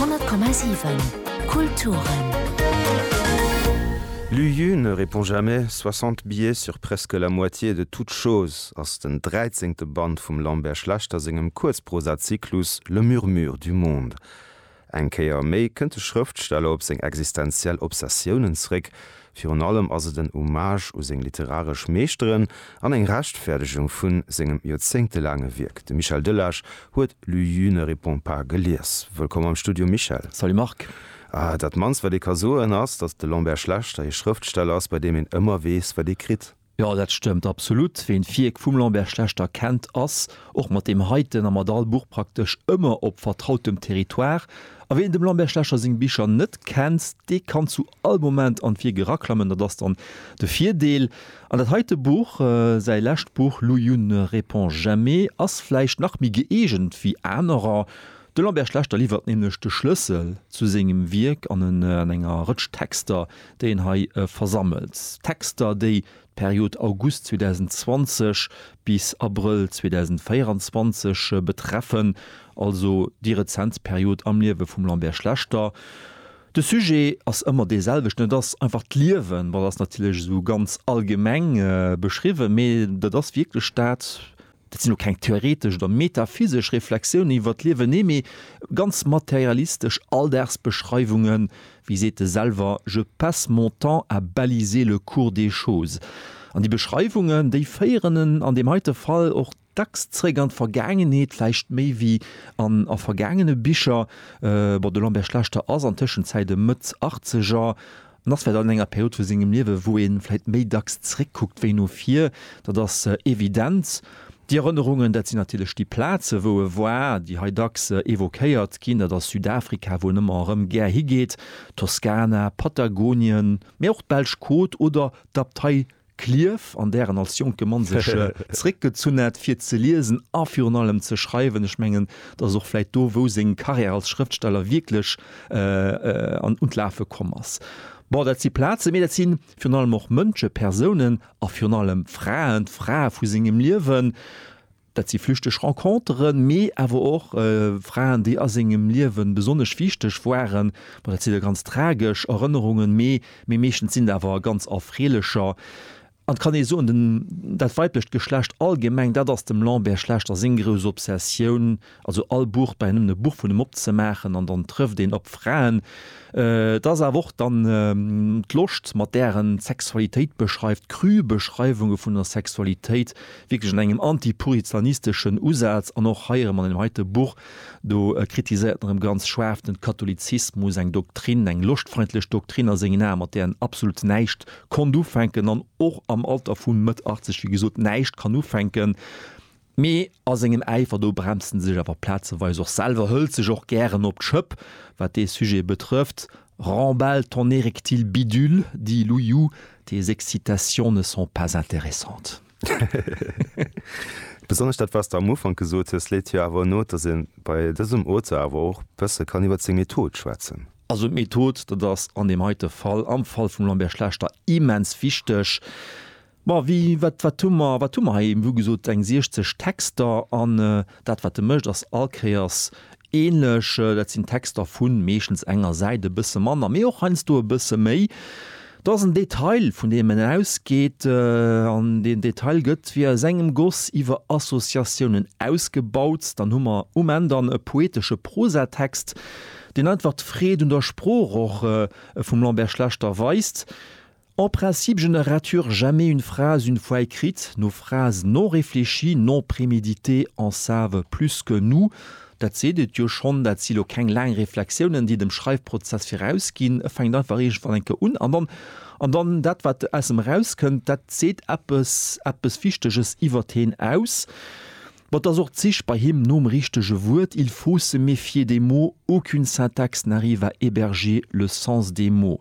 100,7 Kulturen. Lu Yu ne répond jamais, 60 billets sur presque la moitié de toutes choses ass den dräizéngte Band vum Lambert Schlechter sengem Kuerzprosazyklus Le murmure du monde. Eng Kéier méi kënnt de Schrëftsteller op seng existenziell Obsessiounen zréck, Virun allem ass et en Hommage u seng literaresch Meeschteren an eng Rechtfäerdegung vu sengem joerzéngtelaange Wierk. De Michel Delage huet L'UU ne répond pas gelies. Wëllkomm am Studio Michel. Salut Marc. Dat mannst wat ee ka soen ass, datt de Lambert Schlechter ee Schrëftsteller ass, bei deem een ëmmer weess wat ee kritt. Jo, dat stëmmt absolut. Ween d'Wierk vum Lambert Schlechter kennt, ass och mat deem heiten a mat all Buch praktesch ëmmer op vertrautem Territoire. A ween dem Lambert Schlechter seng Bicher net kennt, dee kann zu all Moment an d'Wierk eraklammen. Dat ass dann de Virdeel. An dat heite Buch, säi lescht Buch Louyoun ne répond jamais ass vläicht nach méi gëeegent wéi anerer. De Lambert Schlechter liwwert nämlech de Schlëssel zu sengem Wierk an enger Rëtsch Texter, déien hei versammelt Texter, déi d'Period August 2020 bis Abrëll 2024 betreffen, also déi rezent Period am Liewe vum Lambert Schlechter. De Sujet ass ëmmer dee selwechten, et ass einfach d'Liewen, dat ass natierlech esou ganz allgemeng beschriwwen, mee dat ass wierklech dat, Dat sinn elo keng theoretesch oder metaphysesch Reflexiounen iwwer d'Liewen, nee, mee ganz materialistesch Alldagsbeschreiwungen. Wéi seet e selwer, Je passe mon temps à baliser le cours des choses. An déi Beschreiwungen, déi féieren en an deem heite Fall och dacks zréck an d'Vergaangenheet, vläicht méi wéi an a vergaangene Bicher. Bon, de Lambert Schlechter ass an Tëschenzäit e Mëtt-Achtzeger. An ass vläit an enger Period vu sengem Liewe wou ee vläit méi dacks zréckkuckt wéi no vir, dat ass evident. Déi Erënnerungen, dat sinn natierlech déi Plaze wou e war, déi hei dacks evoquéiert ginn, dat ass Südafrika wou en ëmmer erëm gär higeet, Toskana, Patagonien, mee och d'Belsch Côte oder d'Abtei Klierf, an där en als jonke Mann sech zréckgezunn hat, fir ze liesen a virun allem ze schreiwen. Ech mengen, dat ass och vläicht do, wou seng Karriär als Schrëftsteller wierklech un d'Lafe komm ass. Bon, dat si Plazen, mee dat si virun allem och Mënsche, Persounen a virun allem Fraen, d'Frae vu sengem Liewen. Dat si flüchteg Renconteren, mee awer och Fraen, déi a sengem Liewe besonnesch wichteg waren. Bon, dat si da ganz tragesch Erënnerungen, mee meeschtens sinn et awer ganz erfreelecher. An et kann ee soen, dat weiblecht Geschlecht allgemeng, dat ass dem Lambert Schlechter seng grouss Obsessioun, Also all Buch bei nëmmen e Buch vun em opzemaachen an dann trëfft een op Fraen. Et ass awer och dann d'Loscht, mat där en d'Sexualitéit beschreift, cru Beschreiwunge vun der Sexualitéit, wierklech an engem anti-puritaneschen-isteschen Usaz. An och hei erëm, an deem heite Buch, do kritiséiert en erëm ganz schaarf den Katholizismus, eng Doktrin, eng loschtfeindlech Doktrin a sengen Aen, mat där en absolut näischt konnt ufänken an och am Alter vu Mëtt 80, wéi gesot, näischt kann ufänken. Mee a sengem Äifer do bremst en sech awer plazeweis och selwer, hëlt sech och gären op d'Schëpp, wat dee Sujet betrëfft, Remballe ton érectile bidule, dit Louis-Jou, tes excitations ne sont pas intéressantes. Besonnesch dat, wat s de am Ufank gesot hues, leet jo awer no, dass ee bei dësem Auteur awer och bësse kann iwwer seng Method schwätzen. Also d'Method, dat ass an deem heite Fall, am Fall vum Lambert Schlechter, immens wichteg. Bon, wie, wat, wat hu mer, wat hu mer hei? Wéi gesot, eng 60 Texter an dat, wat e mécht, ass all Kéiers änlech. Dat sinn Texter vu meeschtens enger Säit, e bësse manner, mee och heiansdo e bësse méi. Dat ass en Detail, vun deem en ausgeet an deen Detail gëtt wéi aus engem Goss iwwer Associatiounen ausgebaut. Dann hu mer um Enn dann e poetesche Prosatext, deen einfach d'Freed un der Sprooch och vum Lambert Schlechter weist. En principe je ne rature jamais une phrase une fois écrite, nos phrases non réfléchies, non préméditées en savent plus que nous, dat seet et jo schonn, dat si lo keng laang Reflexiounen déi dem Schreifprozess viraus ginn, e fänkt einfach iergendwann eng Kéier un an dann, an dann dat wat aus em eraus kënnt, dat seet eppes, eppes Wichteges iwwert heen aus. Bon, et ass och d'Sich bei him nom richtege Wuert, il faut se méfier des mots, aucune syntaxe n'arrive à héberger le sens des mots.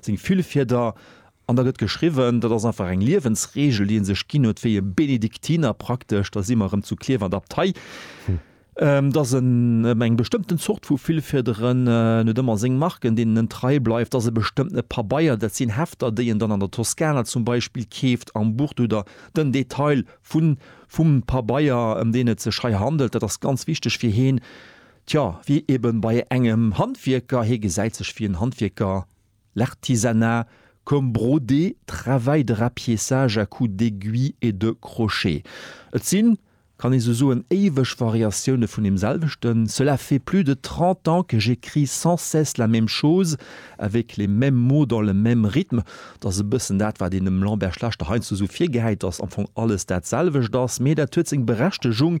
seng vill Fieder an da gëtt geschriwwen. Dat ass einfach eng Liewensregel, déi e sech ginn huet, wéi e Benediktiner praktesch, da si mer erëm zu Klierf an der Abtei, dass en ëm eng bestëmmten Zort vu Villfiederen, en huet ëmmer seng Marken, deenen en trei bleift, dass e bestëmmtene Pabeier, dat sinn Hefter, déi en dann an der Toskana zum Beispill keeft, am Buch do der den Detail vun vum Pabeier, ëm deen et sech hei handelt, dat ass ganz wichteg fir heen. Tjo, wéi eben bei engem Handwierker, hee gesäit sech wéi en Handwierker, l'artisanat comme brodé, travail de rapiessage à coups d'aiguilles et de crochets. Et sinn, kann ee sou soen, éiweg Variatioune vun deem selwechten, cela fait plus de trente ans que j'écris sans cesse la même chose, avec les mêmes mots dans le même rythme. Dat ass e bëssen dat, wat een dem Lambert Schlechter heiansdo sou virgehäit, dass am Fong alles dat selwecht ass, mee dat huet seng Berechtegung.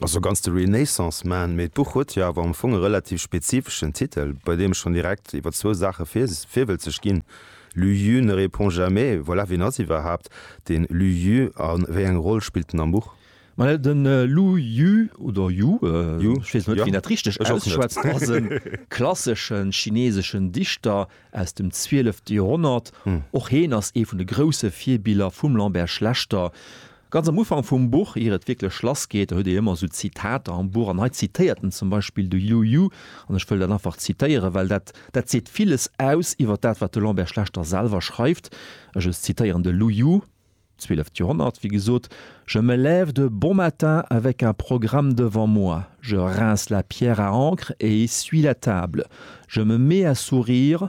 Also ganz de Renaissance Man, mee d'Buch huet jo awer am Fong e relativ spezifeschen Titel, bei deem ech schonn direkt iwwer zwou Saache virwëlzeg ginn, Lü Jü ne répond jamais, voilà, wien ass iwwerhaapt dee Lü Jü a wéi eng Roll spillt en am Buch? Well de Lü Jü, oder Yu, ech weess net, wéi een dat richteg ausschwätzt, ass e klassesche chineeseschen Dichter aus dem zwielefte Joerhonnert. Och hien ass ee vun de grousse Virbiller vum Lambert Schlechter, Ganz am Ufank vum Buch, ier et wierklech lass geet, da huet ee ëmmer esou Zitater am Buch an hei zitéiert en zum Beispill de Yu Yu an ech wëll dat einfach zitéieren, well dat dat seet villes aus iwwer dat wat de Lambert Schlechter selwer schreift. Ech ech zitéieren de Lu Yu, zwieleft Joerhonnert wéi gesot, Je me lève de bon matin avec un programme devant moi, je rince la pierre à encre et essuie la table, je me mets à sourire,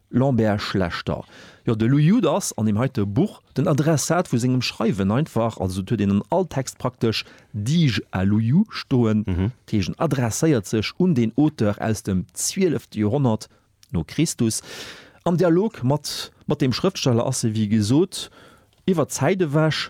Lambert Schlechter, Jo, de Lou Jude ass an deem heite Buch den Adressat vu sengem Schreiwen einfach. Also et huet een an all Text praktesch Dige à Lou Jude stoen. Dat heescht en adresséiert sech un deen Auteur aus dem zwielefte Joerhonnert no Christus. Am Dialog mat mat deem Schrëftsteller ass e wéi gesot iwwer d'Zäit ewech.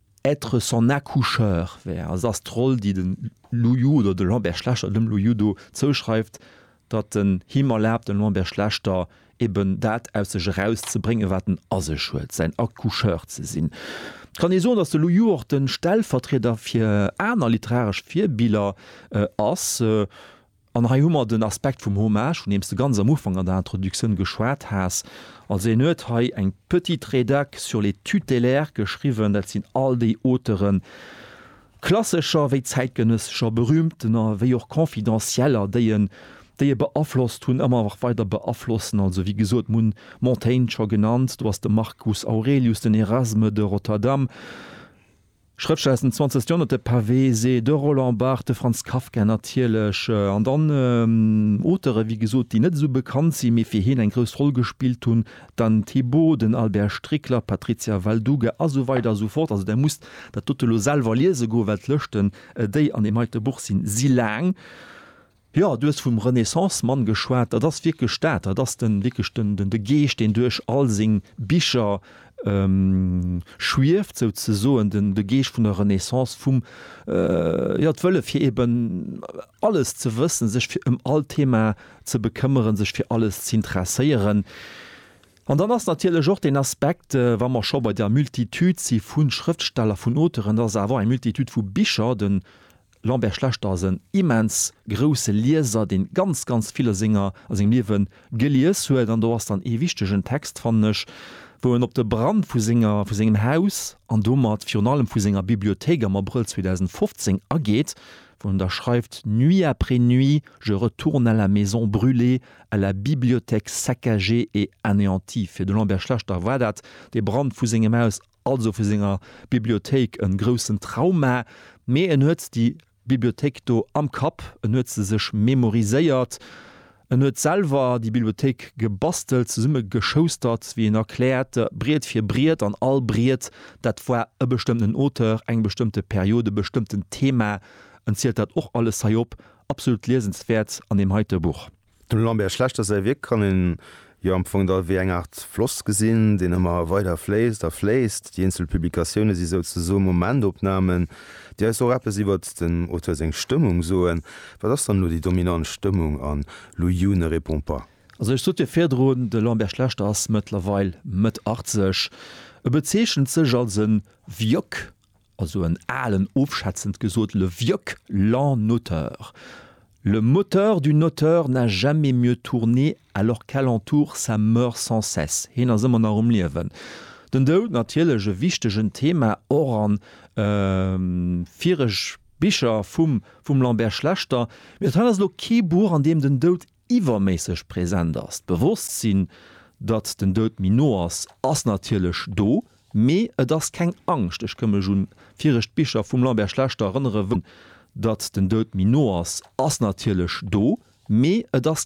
Être son accoucheur wär, also ass d'Roll, déi de Lu Yu oder de Lambert Schlechter dem Lu Yu do zouschreift, datt en him erlaabt, dem Lambert Schlechter, eben dat aus sech erauszebréngen, wat en a sech huet, säin Accoucheur ze sinn. Et kann ee soen, datt de Lu Yu och de Stellvertrieder fir aner literaresch Virbiller ass. An hei hu mer den Aspekt vum Hommage, vun deem s de ganz am Ufank an der Introductioun geschwat has. Also hien huet hei eng petite Rédac sur les tutélaires geschriwwen. Dat sinn all déi Auteuren, klassescher wéi zäitgenëssescher, berühmtener wéi och confidentieller, déi en, déi e beaflosst hunn, ëmmer nach weider beaflossen. Also wéi gesot, mer hunn Montaigne scho genannt, do ass de Marcus Aurelius, den Erasme de Rotterdam. Schrëftsteller aus dem 20. Joerhonnert, de Pavé, se de Roland Barthes, de Franz Kafka natierlech, an dann Auteuren, wéi gesot, déi net esou bekannt sinn, mee fir hien eng grouss Roll gespillt hunn, d'Anne Thibaut, den Albert Strickler, d'Patrizia Valduga a sou weider a sou fort. Also Der musst dat dote lo selwer liese goen, well d'Lëschten, déi an deem heite Buch sinn, si laang. Jo, du hues vum Renaissance-Mann geschwat. Dat ass wierklech dat. Dat ass de, wierklech den, den, de Geescht, deen duerch all seng Bicher schwieft, souzesoen, den, de Geescht vun der Renaissance, vum, jo, d'Wëlle fir eben alles ze wëssen, sech fir ëm all Thema ze bekëmmeren, sech fir alles z'interesséieren. An dann ass natierlech och deen Aspekt, wa mer scho bei der Multitude si vu Schrëftsteller, vun Auteuren, dass et awer och eng Multitude vu Bicher, den, Lambert Schlechter ass en immens grousse Lieser, dee ganz, ganz vill a senger, a sengem Liewe gelies huet. An do ass dann ee wichtegen Text, fannen ech, wou en op de Brand vu senger, vu sengem Haus an domat virun allem vu senger Bibliothéik am Abrëll 2015 ageet, wou en da schreift, Nuit après nuit, je retourne à la maison brûlée, à la bibliothèque saccagée et anéantie. Fir de Lambert Schlechter war dat dee Brand vu sengem Haus. also vu senger Bibliothéik en groussen Trauma, mee en huet déi Bibliothéik do am Kapp, en huet se sech memoriséiert, en huet selwer déi Bibliothéik gebastelt, zesummegeschoustert, wéi en erkläert, Briet fir Briet an all Briet, dat war e bestëmmten Auteur, eng bestëmmte Period, e bestëmmten Thema, en zielt dat och alles hei op, absolut liesenswäert an deem heite Buch. Dem Lambert Schlechter säi Wierk kann een jo am Fong da wéi eng Aart Floss gesinn, deen ëmmer weider fléisst a fléisst. Déi eenzel Publikatioune si souzesoe Momentopnamen, déi eis och eppes iwwert den Auteur seng Stëmmung soen. Wat ass dann elo déi dominant Stëmmung an Lu Yu ne répond pas? Also ech sot jo virdrun, de Lambert Schlechter ass mëttlerweil Mëtt 80. E bezeechent sech als e Wjok. Also en alen, ofschätzend gesot, le vieuc lent notaire, le moteur du notaire n'a jamais mieux tourné alors qu'alentour ça meurt sans cesse, heen ass ëmmer nach um Liewen. Den Doud natierlech e wichtegen Thema och an vireg Bicher vum Lambert Schlechter, mee dat hei ass elo kee Buch an deem den Doud iwwerméisseg präsent ass. D'Bewosstsinn, datt den Doud méi no ass, ass natierlech do, mee et ass keng Angscht. Ech kënn mech un viregt Bicher vum Lambert Schlechter erënnere wou et och ëm d'Angscht geet, datt den Doud méi no ass, ass natierlech do, mee et ass.